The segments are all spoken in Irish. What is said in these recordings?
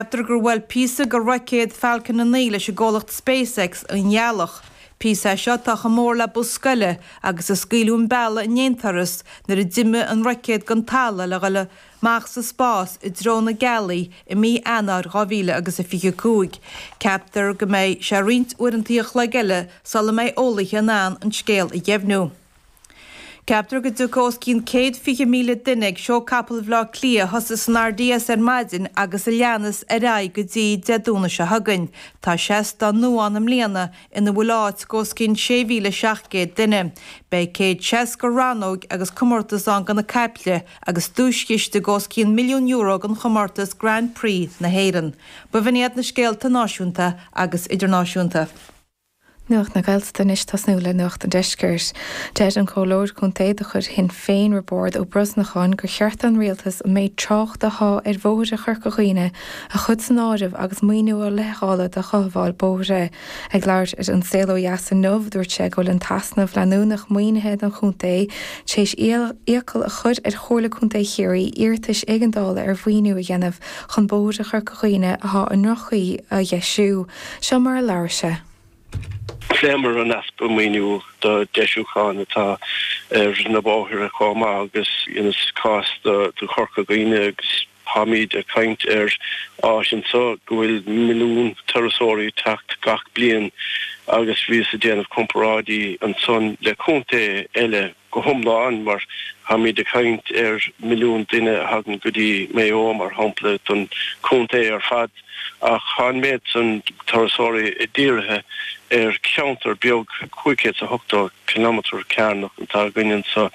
Ceaptar gur bhuail píosa de roicéad Falcon 9 leis an gcomhlacht SpaceX an Ghealach. Píosa é seo atá chomh mór le bus scoile agus a scaoileadh an bealadh in aon turas nuair a d'imigh an roicéad den talamh le dul amach sa spás i dtreo na Gealaí i mí Eanáir 2025. Ceaptar go mbeidh sé roinnt uaireantaí an chloig eile sula mbeidh eolaithe in ann an scéal a dheimhniú. Ceaptar go dtiocfaidh os cionn 120,000 duine ag Seó Capall Bhaile Átha Cliath, a thosaigh san RDS ar maidin agus a leanas ar aghaidh go dtí Dé Domhnaigh seo chugainn. Tá seastán nua ann i mbliana ina bhfuil áit d'os cionn 6,700 duine. Beidh 160 rannóg agus comórtas ann do na caiple agus duaischiste d'os cionn milliún euro don chomórtas Grand Prix na hÉireann. B'in iad na scéalta náisiúnta agus idirnáisiúnta. Nuacht na Gaeltachta anois ag tosnú le Nuacht an Deiscirt. Deir an Comhairleoir Contae de chuid Shinn Féin Roibeárd Ó Brosnacháin gur cheart don Rialtas an méid tráchta athá ar bhóithre Chorca Dhuibhne a chur san áireamh agus maoiniú a leithdháileadh do chothabháil bóithre. Ag labhairt ar An Saol Ó Dheas inniu dúirt sé go bhfuil an t-easnamh leanúnach maoinithe don chontae tar éis iachall a chur ar Chomhairle Contae Chiarraí iarratais éigeandála ar mhaoiniú a dhéanamh chun bóithre Chorca Dhuibhne athá i ndroch-chaoi a dheisiú. Seo mar a labhair sé. Phléamar an easpa maoiniú do deisiúcháin atá ar na bóithre chomh maith agus dheineas cás do Chorca Dhuibhne agus táimíd ag caint ar áit anseo go bhfuil milliún turasóirí ag teacht gach bliain agus bhíos ag déanamh comparáidí ansan le contae eile. go hiomlán, mar táimid ag caint ar milliún duine a thagann go dtí Maigh Eo, mar shampla, don chontae ar fad, ach tá an méid san turasóirí dírithe ar cheantar beag 580 cileametar cearnach atá againn anseo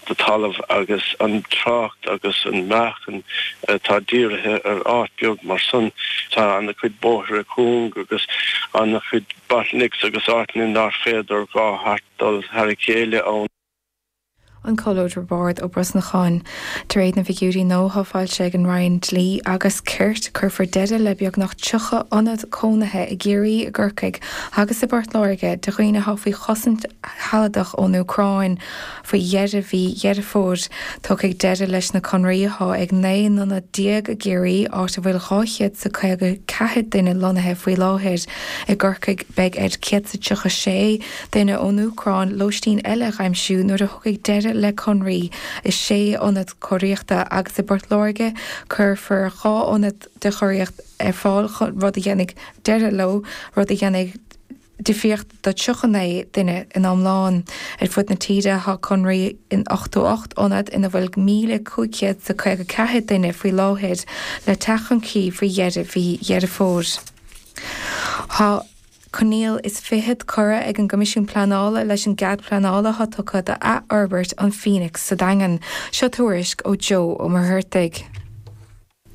de talamh agus an trácht agus an meáchan atá dírithe ar áit beag mar san. Tá an-chuid bóithre cúng agus an-chuid bottlenecks agus áiteanna nach féidir dhá dul thar a chéile ann. An Comhairleoir Roibeárd Ó Brosnacháin. De réir na bhfigiúirí nua athá foilsithe ag an Roinn Dlí agus Cirt, cuirfear deireadh le beagnach 30 ionad cónaithe i gCiarraí, i gCorcaigh agus i bPort Láirge do dhaoine atá faoi chosaint shealadach ón Úcráin faoi dheireadh mhí Dheireadh Fómhair. Tiocfaidh deireadh leis na conraí atá ag 19 n-ionad i gCiarraí, áit a bhfuil dhá chéad is a caoga ceathair duine lonnaithe faoi láthair. I gCorcaigh beidh ar chéad is a tríocha sé. Duine ón Úcráin, lóistín eile a aimsiú nuair a thiocfaidh deireadh le conraí i sé ionad cóiríochta agus i bPort Láirge cuirfear dhá ionad de chóiríocht ar fáil, rud a dhéanfaidh deireadh leo, rud a dhéanfaidh difríocht do 39 duine in iomlán. Ar fud na tíre tá conraí in 88 ionad ina bhfuil 1,554 duine faoi láthair le teacht chun críche faoi dheireadh mhí Dheireadh Fómhair. Tá. Coinníoll is fichead curtha ag an gCoimisiún Pleanála leis an gcead pleanála atá tugtha d'athfhorbairt an Phoenix sa Daingean. Seo tuairisc ó Joe Ó Muircheartaigh.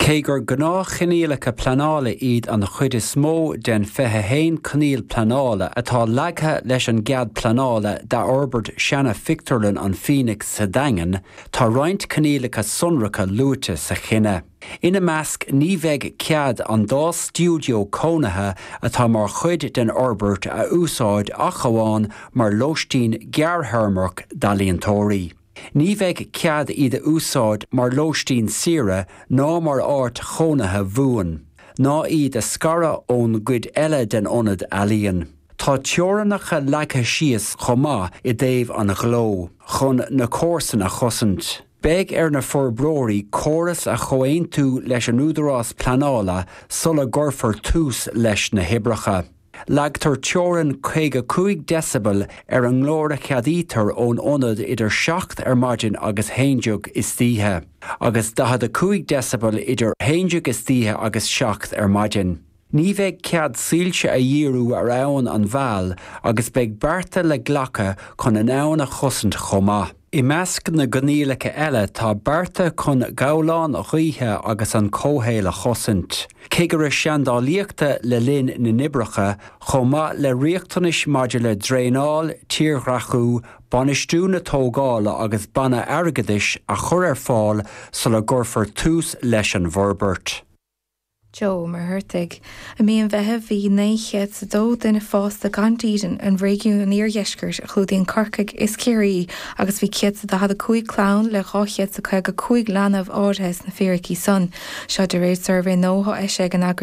Cé gur gnáthchoinníollacha pleanála iad an chuid is mó den 21 coinníoll pleanála atá leagtha leis an gcead pleanála d'athfhorbairt seana-phictiúrlann an Phoenix sa Daingean, tá roinnt coinníollacha sonracha luaite sa chinneadh. Ina measc ní bheidh cead an dá stiúideo cónaithe atá mar chuid den fhorbairt a úsáid ach amháin mar lóistín gearrthéarmach d'ealaíontóirí. Ní bheidh cead iad a úsáid mar lóistín saoire ná mar áit chónaithe bhuan, ná iad a scaradh ón gcuid eile den ionad ealaíon. Tá teorainneacha leagtha síos chomh maith i dtaobh an ghleo, chun na comharsana a chosaint. Beidh ar na forbróirí córas a chomhaontú leis an údarás pleanála sula gcuirfear tús leis na hoibreacha. Leagtar teorainn 55 decibel ar an nglór a cheadaítear ón ionad idir 7 ar maidin agus 11 istoíche, agus 45 decibel idir 11 istoíche agus 7 ar maidin. Ní bheidh cead soilse a dhíriú ar abhainn an Mheal agus beidh bearta le glacadh chun an abhainn a chosaint chomh maith. I measc na gcoinníollacha eile tá bearta chun gabhláin ghaoithe agus an comhshaol a chosaint, cigire seandálaíochta le linn na n-oibreacha, chomh maith le riachtanais maidir le draenáil, tírdhreachú, bainistiú na tógála agus banna airgeadais a chur ar fáil sula gcuirfear tús leis an bhforbairt. Joe Ó Muircheartaigh. I mí an Mheithimh bhí 902 duine fásta gan dídean i réigiún an iardheiscirt a chlúdaíonn Corcaigh is Ciarraí agus bhí 145 clann le 255 leanbh áirithe sna fíricí san seo de réir suirbhé nua a d'eisigh an eagraíocht